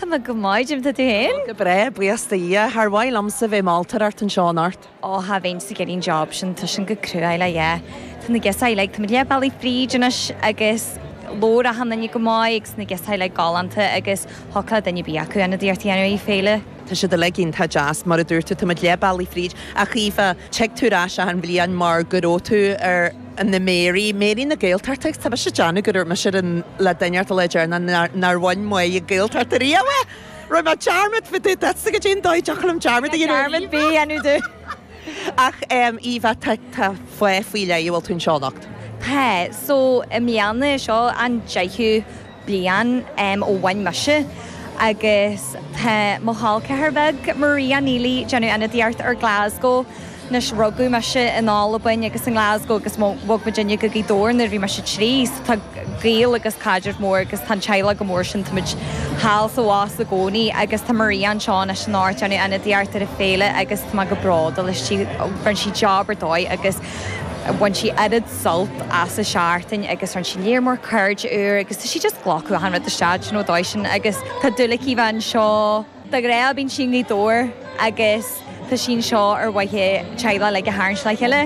Tá mé go maith, goidé mar tá tú féin? Go breá, buíochas do Dhia. Char mhaith liomsa bheith ag moltóireacht anseo anocht. Ó, cha bheinnse ag iarraidh an job sin, tá sin go cruáil, á yeah. Tá na girseachaí, like, táimid leath bealaigh fríd anois agus labhair achan duine go maith agus na girseachaí, like, galánta agus thiocfadh le duine ar bith acu ionadaíocht a dhéanamh ar an fhéile. Tá siad uilig iontach deas, mar a dúirt tú, táimid leath bealaigh fríd. Ach Eva, tig tú ar ais achan bhliain mar go raibh tú ar. na Mary, Mary na Gaeltachta, tá mise ag déanamh go raibh mise ar an, le duine orthu le déarna nár, nár bhain mé ag Gaeltacht ariamh é! Rinne mé dearmad, bhí tú, that's, goidé an dóigh a dtiocfadh liom dearmad a dhéanamh ar Eva! Dearmad, bhí, déanamh do. Ach em, Eva, tá, tá, fáth faoi leith a bhfuil tú anseo anocht? Tá, so, i mbliana, seo an deichiú. bliain ó bhain mise agus tá mo chol ceathrair beag, Maria, Neilí, ag déanamh ionadaíocht ar Glasgow. Anois, rugadh mise in Albain agus i nGlasgow agus bhog muid uilig go Gaoth Dobhair nuair a bhí mise trí, so tá gaol agus caidreamh mór agus tá an teaghlach go mór sin, tá muid thall is abhus i gcónaí agus tá Maria anseo anois anocht ag déanamh ionadaíocht ar an fhéile agus tá mé go bródúil aisti, rinne sí job ar dóigh agus bhain sí oiread. sult as an tseachtain agus rinne sí lear mór cairde úr agus tá sí just ag glacadh achan rud isteach do you know dóigh sin agus tá dúil aici bheith anseo dá go raibh bíonn sí i nGaoth Dobhair agus tá sí anseo ar mhaithe teaghlach like a tharraingt le chéile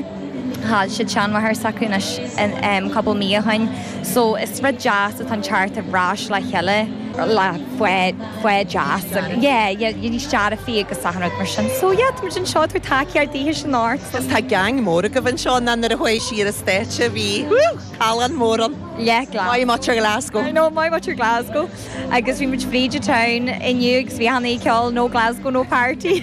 chaill siad seanmháthair s'acu anois in em couple mí ó shin so is rud deas atá ann teacht ar ais le chéile le faid gaoth deas agus yeah yeah yeah níos dearfaí agus achan rud mar sin so yeah tá muid anseo ag tabhairt tacaíocht dithe anseo anocht so. Agus tá geaing mór agaibh anseo nó nuair a chuaigh sí ar an stáitse bhí callán mór ann yeah glas muintir Glasgow I know muintir Glasgow agus bhí muid fríd town inniu agus bhí muid ag ceol No Glasgow No Party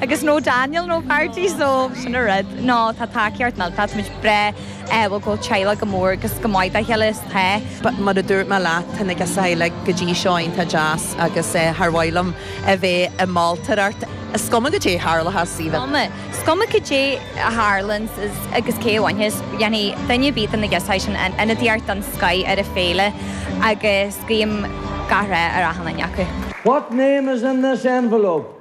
agus No Daniel No Party so sin an rud nó tá tacaíocht tá muid breá úil go bhfuil an teaghlach go mór agus go maith dá chéile is tá. Mar a dúirt mé leat, tá na girseachaí go dtí seo iontach deas agus char mhaith liom a bheith ag moltóireacht. Is cuma goidé a tharlóchas, Eva. Cuma. Is cuma goidé a tharlaíonns agus cé a bhainfidh, déanfaidh duine ar bith de na girseachaí sin ionadaíocht den scoth ar an fhéile agus guím gach rath ar achan duine acu. What name is in this envelope?